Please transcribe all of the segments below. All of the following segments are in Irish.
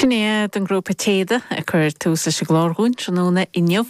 Sin iad an grúpa Téada ag cur tús leis an gclár dhúinn tráthnóna inniu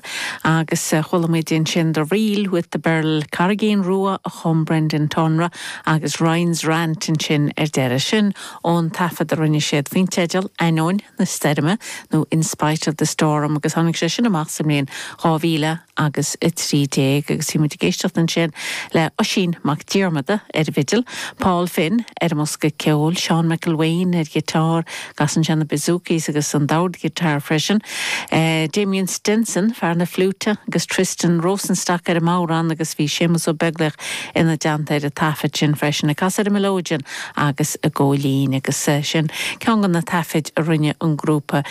agus chuala muid ansin The Reel with the Birl, Carraigín Rua a chum Brendan Tonra agus Ryan's Rant ansin ar deireadh. Sin ón taifead a rinne siad faoin teideal Ainneoin na Stoirme nó In Spite of the Storm agus tháinig sé sin amach sa mbliain 2000. agus 13 agus bhí muid ag éisteacht ansin le Oisín Mac Diarmada ar an bhfidil, Paul Finn ar an mbosca ceoil, Seán McElwain ar ghiotár, casann sé na bouzoukis agus an dord guitar freisin, Damien Stenson, fear na fliúite, agus Tristan Rosenstock ar an mbodhrán agus bhí Séamus Ó Beaglaoich ina dteannta ar an taifead sin freisin ag casadh ar an mileoidean agus ag gabháil fhoinn agus sin ceann de na taifid a rinne an grúpa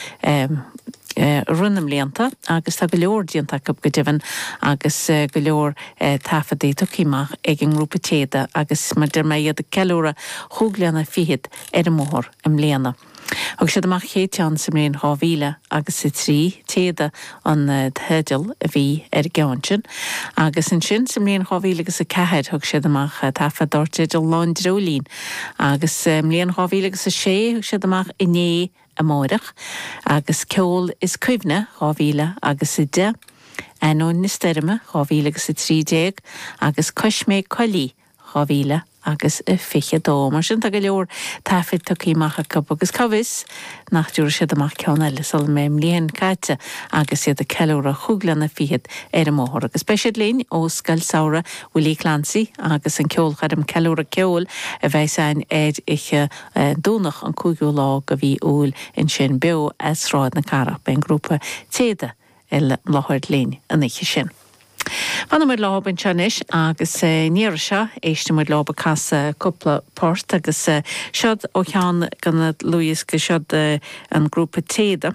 rith na mblianta agus tá go leor déanta acu go deimhin agus go leor taifeadtaí tugtha amach ag an ngrúpa Téada agus mar a deir mé iad ag ceiliúradh chúig bliana fichead ar an mbóthar i mbliana. Thug siad amach an chéad cheann sa mbliain dhá mhíle agus a trí, Téada an teideal a bhí ar an gceann sin, agus ansin sa mbliain dhá mhíle agus a ceathair thug siad amach taifead dar teideal Lá an Dreoilín agus sa mbliain dhá mhíle agus a sé thug siad amach Inné a amárach, agus ceol is cuimhne dhá mhíle agus a deich, ainneoin na stoirme, dhá mhíle agus a trí déag, agus coisméig coiligh, dhá mhíle agus a fiche dó. Mar sin, tá go leor taifid tugtha amach acu, agus cá bhfios nach dtiúrfaidh siad amach ceann eile sula mbeidh an bhliain caite agus iad ag ceiliúradh chúig bliana fichead ar an mbóthar. Agus beidh siad linn ó Scoil Samhraidh Willie Clancy agus an ceolchoirm Ceiliúradh Ceoil a bheas ann ar oíche Domhnaigh an cúigiú lá de mhí Iúil ansin beo as Sráid na Cathrach. Beidh an grúpa Téada i láthair linn an oíche sin. Fanfaidh muid leo anseo anois agus an iarraidh seo éistfidh muid leo ag casadh cúpla port agus seod ó cheann de na dlúthdhioscaí, seod an grúpa Téada.